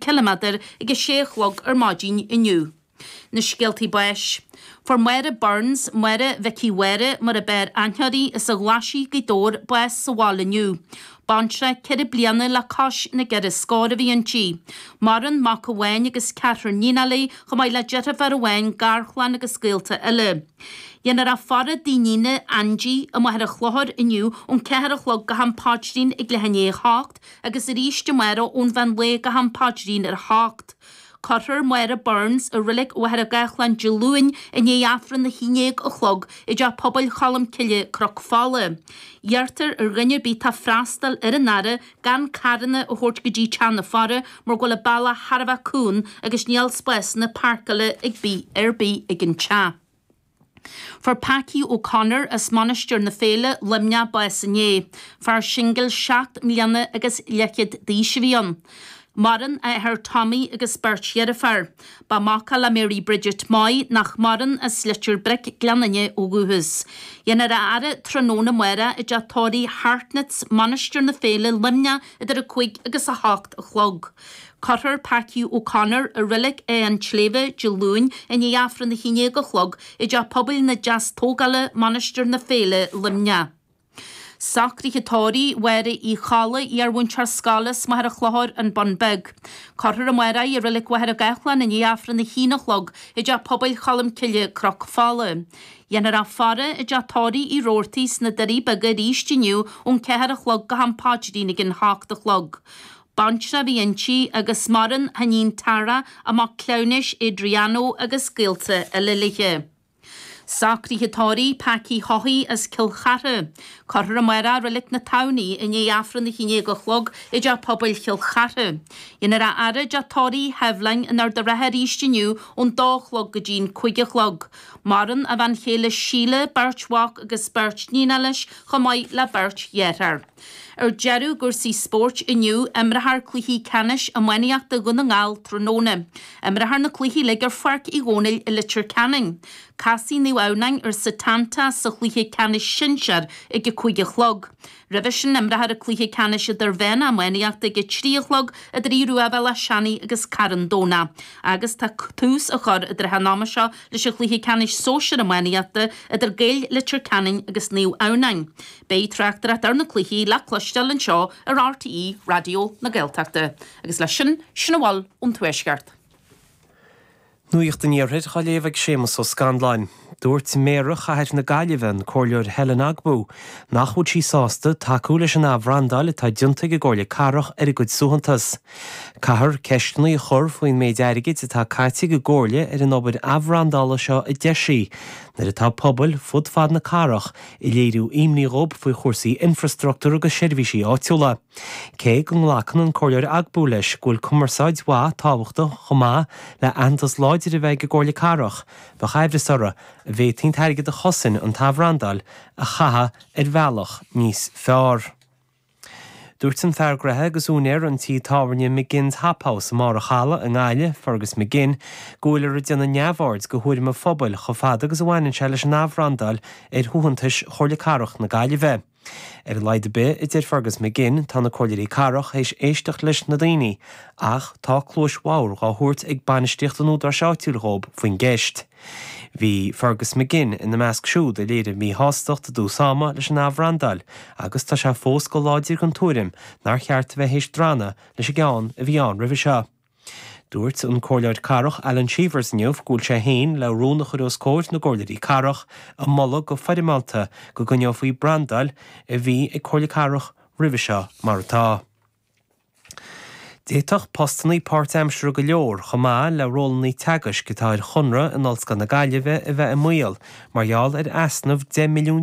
ciliméadair ag a sé a chlog ar maidin inniu. Na scéaltaí báis. Fuair Máire Burns, Máire Mhicí Mháire mar ab fhearr aithne uirthi as an Ghlaisigh Gaoth Dobhair bás sa bhaile inniu. Baintreach ceithre bliana le cois na gceithre scór a bhí inti. Maireann mac amháin agus ceathrar níonacha léi chomh maith le deirfiúr amháin, garchlann agus gaolta eile. Dhéanfar a faire i dtigh a níne, Aindí, i Machaire Chlochair inniu ón ceathair a chlog go ham paidrín ag leath i ndiaidh a hocht. agus arís amárach ón mheán lae go ham paidrín ar a hocht. Cuirfear Máire Burns i Reilig Mhachaire Gathlán Dé Luain i ndiaidh Aifreann a haon déag a chlog i dTeach Pobail Cholm Cille, Cnoc Fola. Iarrtar ar dhuine ar bith atá ag freastal ar an fhaire gan carranna a thabhairt go dtí teach na faire mar go bhfuil an bealach thar a bheith cúng agus níl spásanna páirceála ag bith ar bith ag an teach. Fuair Packy O'Connor as Mainistir na Féile, Luimneach, bás inné. Fear singil seacht mbliana agus leathchéad d'aois a bhí ann. Maireann a athair Tommy agus beirt dheirféar. Ba mac é le Mary Bridget Moy, nach maireann, as Leitir Bric, Gleann Fhinne, ó dhúchas. Dhéanfar a fhaire tráthnóna amárach i dteach tórraimh Hartnetts, Mainistir na Féile, Luimneach, idir a cúig agus a hocht a chlog. Cuirfear Packy O'Connor i Reilig a' tSléibhe Dé Luain i ndiaidh Aifreann a haon déag a chlog i dTeach Pobail na Deastógála, Mainistir na Féile, Luimneach. Socruithe tórraimh Mháire Uí Cholla, iar-mhúinteoir scoile as Machaire Chlochair, An Bun Beag. Cuirfear amárach í i Reilig Mhachaire Gathlán i ndiaidh Aifreann a haon a chlog i dTeach Pobail Cholm Cille, Cnoc Fola. Dhéanfar a faire i dteach tórraimh Uí Roarty sna Doirí Beaga arís inniu ón ceathair a chlog go ham paidrín ag an hocht a chlog. Baintreach a bhí inti agus maireann a hiníon Tara, a mac cleamhnais Adriano agus gaolta eile léi. Socruithe tórraimh Packy Haughey as Cill Chartha. Cuirfear amárach é i Reilig na Tamhnaí i ndiaidh Aifreann a haon déag a chlog i dTeach Pobail Chill Chartha. Dhéanfar a fhaire i dteach tórraimh Sheibhleáin in Ard a' Rátha arís inniu ón dá a chlog go dtí'n cúig a chlog. Maireann a bhean chéile Síle, beirt mhac agus beirt níonacha leis chomh maith le beirt dhearthár. Ar deireadh i gcúrsaí spóirt inniu, imreofar cluichí ceannais iománaíochta Dhún na nGall tráthnóna. Imreofar na cluichí uilig ar Pháirc Uí Dhónaill i Leitir Ceanainn. Casfaidh Naomh Adhamhnáin ar Setanta sa chluiche ceannais sinsear ag a cúig a chlog. Roimhe sin imreofar an cluiche ceannais idirmheánach iománaíochta ag a trí a chlog idir Aodh Ruadh Bhéal Átha Seanaidh agus Carn Domhnach agus tá tús á chur i dtrátha an ama seo leis an chluiche ceannais sóisir iománaíochta idir Gaeil Leitir Ceanainn agus Naomh Adhamhnáin. Beidh tráchtaireacht ar na cluichí le cloisteáil anseo ar RTÉ Raidió na Gaeltachta agus leis sin, sin a bhfuil ón Tuaisceart. Nuacht an Iarthair á léamh ag Séamus Ó Scanláin. Dúirt Méara Chathair na Gaillimhe, an Comhairleoir Helen Ogbu, nach bhfuil sí sásta tacú leis an athbhrandáil atá déanta ag an gComhairle Cathrach ar a gcuid suaitheantais. Caithfear ceisteanna a chur faoin méid airgid atá caite ag an gComhairle ar an obair athbhrandála seo a deir sí, nuair atá pobail fud fad na cathrach ag léiriú imní dhób faoi chúrsaí infreastruchtúr agus seirbhísí áitiúla. Cé go nglacann an Comhairleoir Ogbu leis go bhfuil cumarsáid mhaith tábhachtach chomh maith le aitheantas láidir a bheith ag an gComhairle Cathrach, b'fhacthas di go bhféadfaí an t-airgead a chosain an t-athbhrandáil a chaitheamh ar bhealach níos fearr. Dúirt an fear gnaithe agus úinéir an tí tábhairne McGinn's Hop House i mBarr a' Chalaidh i nGaillimh, Fergus McGinn, go bhfuilear ag déanamh neamhaird de thuairim an phobail chomh fada agus a bhaineann sé leis an athbhrandáil ar shuaitheantais Chomhairle Cathrach na Gaillimhe. Ar a laghad ar bith, a deir Fergus McGinn, tá na Comhairleoirí Cathrach théis éisteacht leis na daoine ach tá cluais bhodhar dhá thabhairt ag bainistíocht an údaráis áitiúil dhób faoin gceist. Bhí Fergus McGinn ina measc siúd a léirigh míshástacht i dtús ama leis an athbhrandáil agus tá sé fós go láidir den tuairim nár cheart a bheith théis drannadh leis an gceann a bhí ann roimhe seo. Dúirt an Comhairleoir Cathrach Alan Cheevers inniu go bhfuil sé féin le rún a chur os comhair na gComhairleoirí Cathrach ag moladh go foirmeálta go gcoinneofaí an bhrandáil a bhí ag an gComhairle Cathrach roimhe seo mar atá. D'fhéadfadh postannaí páirtaimseartha go leor, chomh maith le rólannaí teagaisc atá ar chonradh in Ollscoil na Gaillimhe a bheith i mbaol mar gheall ar easnamh €10 milliún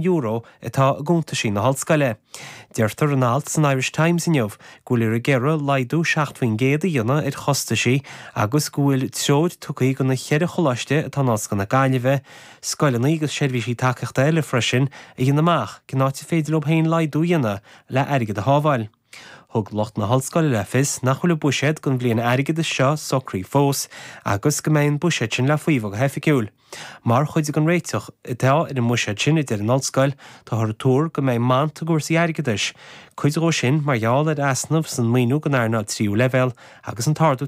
atá i gcuntaisí na hollscoile. Deirtear in alt san Irish Times inniu go bhfuil ar an gcoláiste laghdú 7 faoin gcéad a dhéanamh ar chostaisí agus go bhfuil treoir tugtha go na ceithre choláiste atá in Ollscoil na Gaillimhe scoileanna agus seirbhísí tacaíochta eile freisin a dhéanamh amach cén áit ar féidir leo féin laghdú a dhéanamh le airgead a shábháil. Thug lucht na hOllscoile le fios nach bhfuil a buiséad don bhliain airgeadais seo socraithe fós agus go mbeidh an buiséad sin le faomhadh go hoifigiúil. Mar chuid den réiteach atá ar an mbuiséad sin, a deir an Ollscoil, táthar ag tuar go mbeidh mant i gcúrsaí airgeadais, cuid dhó sin mar gheall ar easnamh san maoiniú don earnáil tríú leibhéal agus an t-ardú